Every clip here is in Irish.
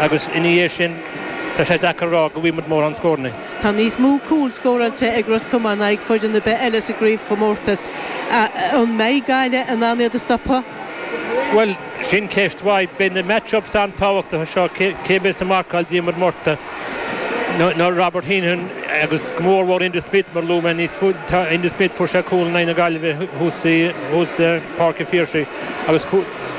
Agus ina dhiaidh sin, tá sé deacair a rá go bhfaighimid mórán scóranna. Tá níos mó cúl scóráilte ag Ros Comáin in aghaidh foireann ar bith eile sa gcraobhchomórtas. An mbeidh Gaillimh in ann iad a stopadh? Bhuel, sin ceist mhaith. Beidh na match-ups an-tábhachtacha seo, cé a bheas ag marcáil Diarmuid Murtagh nó Robert Heenan agus go mór mhór Enda Smith mar a luaigh mé níos túisce Enda Smith, fuair sé cúl in aghaidh na Gaillimhe thuas i bPáirc an Phiarsaigh agus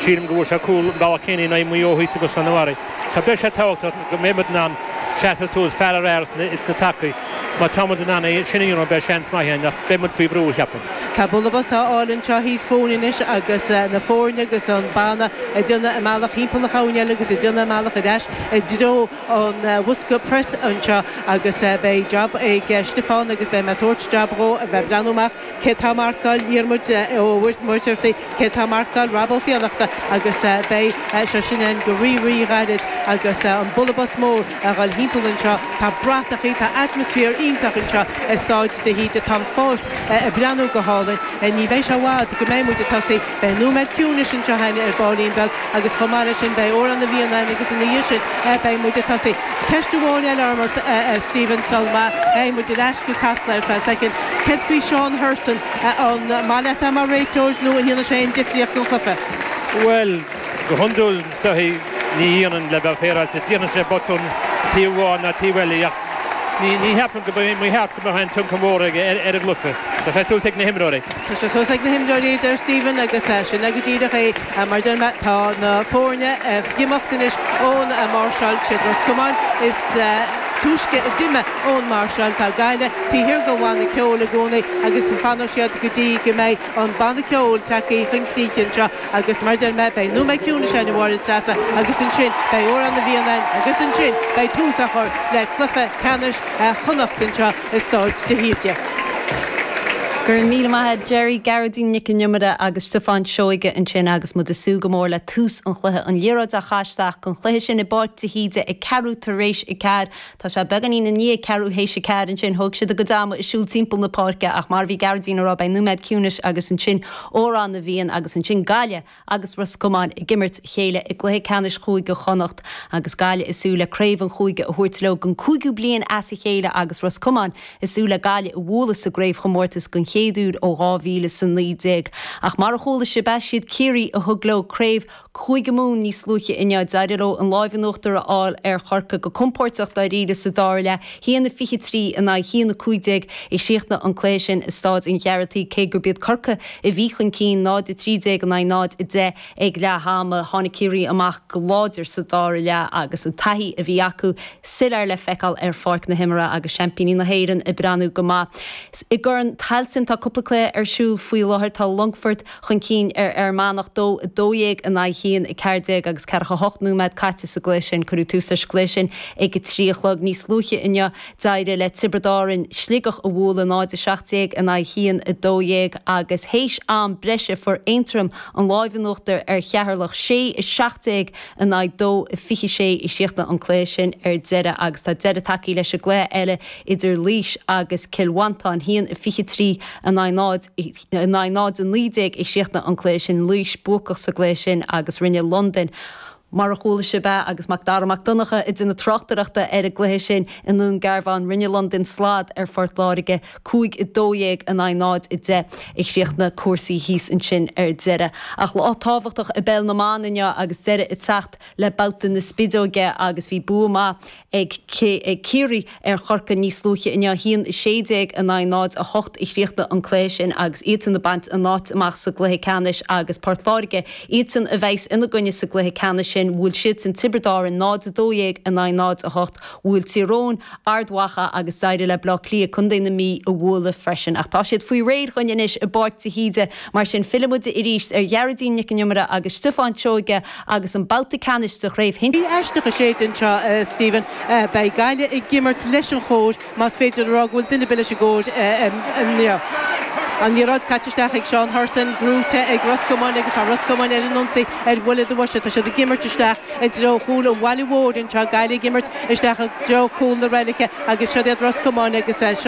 Sílim go bhfuair sé cúl an babhta céanna in aghaidh Mhaigh Eo thuaidh agus an-imreoir atá ann. Beidh sé tábhachtach go mbeidh muid in ann seasamh suas fear le fear sna tacaí. Má tá muid in ann é sin a dhéanamh beidh seans maith ann ach beidh muid faoi bhrú, cheapaim. Tá bualadh bos á fháil anseo thíos fúinn anois agus na foirne agus an banna ag déanamh a mbealach thimpeall na heangaí eile agus ag déanamh a mbealach ar ais i dtreo an bhosca preas anseo agus beidh jab ag Stiofán agus beidh mé ag tabhairt jab dhó a bheith ag breathnú amach Cé atá ag marcáil Diarmuid Ó Muircheartaigh Cé atá ag marcáil Rob Ó Fiannachta Agus beidh sé sin againn go rí-rí-ghairid agus an bualadh bos mór ag dul thimpeall anseo. Tá bratachaí, tá atmaisféar iontach anseo i Stáid de hÍde. Tá an pháirc ag breathnú go hálainn. Ní bheidh sé i bhfad go mbeidh muid ag tosaí. Beidh nóiméad ciúnais anseo ar ball beag agus chomh maith leis sin beidh Amhrán na bhFiann ann agus ina dhiaidh sin beidh muid ag tosaí. Ceist amháin eile orm ort Stephen sula mbeidh muid ar ais go Casla ar feadh soicind. Céard faoi Seán Hurson? An maith leat é mar réiteoir nó an ndéanann sé aon difríocht don chluiche? Bhuel, go hiondúil. Is dóichí, ní dhéanann le bheith féaráilte, déanann sé botúin ar thaobh amháin ná ar thaobh eile ach ní cheapaim go mba cheart go mbeadh aon tionchar mór aige ar an gcluiche. Tá sé suas ag na himreoirí. Tá sé suas ag na himreoirí, a deir Stephen agus sin é go díreach é. Mar a deir mé, tá na foirne ag imeacht anois ón máirseáil, siad Ros Comáin is túisce a d'imigh ón máirseáil, tá Gaillimh taobh thiar den bhanna ceoil i gcónaí agus fanfaidh siad go dtí go mbeidh an banna ceoil tagtha chun críche anseo. Agus mar a deir mé, beidh nóiméad ciúnais ann, a Mháire Treasa, agus ansin beidh Amhrán na bhFiann ann agus ansin beidh tús á chur le cluiche ceannais Chonnacht anseo i stáid de hÍde. Go raibh míle maith a'd Gerry, Gearóidín Nic An Iomaire agus Stiofán Seoige ansin agus muid ag súil go mór le tús an chluiche, an liathróid á chaitheamh isteach don chluiche sin i bPáirc de hÍde ag ceathrú tar éis a ceathair. Tá sé beagáinín i ndiaidh ceathrú théis a ceathair. Ansin thóg siad a gcuid ama ag siúl timpeall na páirce ach mar a bhí Gearóidín ag rá, beidh nóiméad ciúnais agus ansin Amhrán na bhFiann agus ansin Gaillimh agus Ros Comáin ag imirt le chéile i gcluiche ceannais Chúige Chonnacht agus Gaillimh ag súil le craobh an chúige a thabhairt leo don chúigiú bliain as a chéile agus Ros Comáin ag súil le Gaillimh a bhualadh sa gcraobhchomórtas den chéad uair ó 2019. Ach mar a chuala sibh, siad Ciarraí a thug leo craobh Cúige Mumhan níos luaithe inniu. D'éirigh leo an láimh in uachtar a fháil ar Chorcaigh go compóirteach dáiríre sa dara leath, 1-23 in aghaidh 1-15, a chríochnaigh an cluiche sin i Staid an Ghearaltaigh cé gurb iad Corcaigh a bhí chun cinn, 0-13 in aghaidh 0-10, ag leath ama. Tháinig Ciarraí amach go láidir sa dara leath agus an taithí a bhí acu soiléir le feiceáil ar pháirc na himeartha agus seaimpíní na hÉireann ag breathnú go maith. I gCorn Tailteann tá cúpla cluiche ar siúl faoi láthair. Tá Longfort. chun cinn ar Fhear Manach, 2 12 in aghaidh 1 14 agus ceathracha 8 nóiméad caite sa gcluiche sin. Cuireadh tús leis an gcluiche sin ag a trí a chlog. Níos luaithe inniu, d'éirigh le Tiobraid Árann Sligeach a bhualadh, 0 17 in aghaidh 1 12 agus théis am breise fuair Aontroim an láimh in uachtar ar Cheatharlach, 6 17 in aghaidh 2 26 a chríochnaigh an cluiche sin ar deireadh agus tá deireadh tagtha leis an gcluiche eile idir Laois agus Cill Mhantáin, 1 23 in aghaidh 0. In aghaidh 0 19 a chríochnaigh an cluiche sin, Laois buacach sa gcluiche sin agus rinne Londain, mar a chuala sibh é agus Mac Dara Mac Donncha ag déanamh tráchtaireachta ar an gcluiche sin i nDún Garbhán, rinne Londain slad ar Phort Láirge, 5 12 in aghaidh 0 10 a chríochnaigh cúrsaí thíos ansin ar deireadh. Ach lá tábhachtach i bPeil na mBan inniu agus deireadh ag teacht le babhta na spideoige agus bhí bua maith ag Ciarraí ar Chorcaigh níos luaithe inniu, 1-16 in aghaidh 0-8 a chríochnaigh an cluiche sin agus iadsan ag baint a n-áit amach sa gcluiche ceannais agus Port Láirge, iadsan a bheas ina gcoinne sa gcluiche ceannais sin. Bhuail siadsan Tiobraid Árann 0-12 in aghaidh 0-8, bhuail Tír Eoghain Ard Mhacha agus d'éirigh le Bleá Cliath contae na Mí a bhualadh freisin. Ach tá siad faoi réir dhúinn anois i bPáirc de hÍde, mar sin fillfidh muid arís ar Ghearóidín Nic an Iomaire agus Stiofán Seoige, agus an babhta ceannais de Chraobh Shinsir. Gaoth aisteach ag séideadh anseo, a Stephen. Beidh Gaillimh ag imirt leis an gcóir, más féidir a rá go bhfuil duine ar bith leis an gcóir inniu. An liathróid caite isteach ag Seán Hurson, brúite ag Ros Comáin agus tá Ros Comáin ar an ionsaí ar bhuille do bhoise. Tá siad ag imirt isteach i dtreo chúl an bhaile mhóir anseo, Gaillimh ag imirt isteach i dtreo cúl na reilice agus siod iad Ros Comáin agus.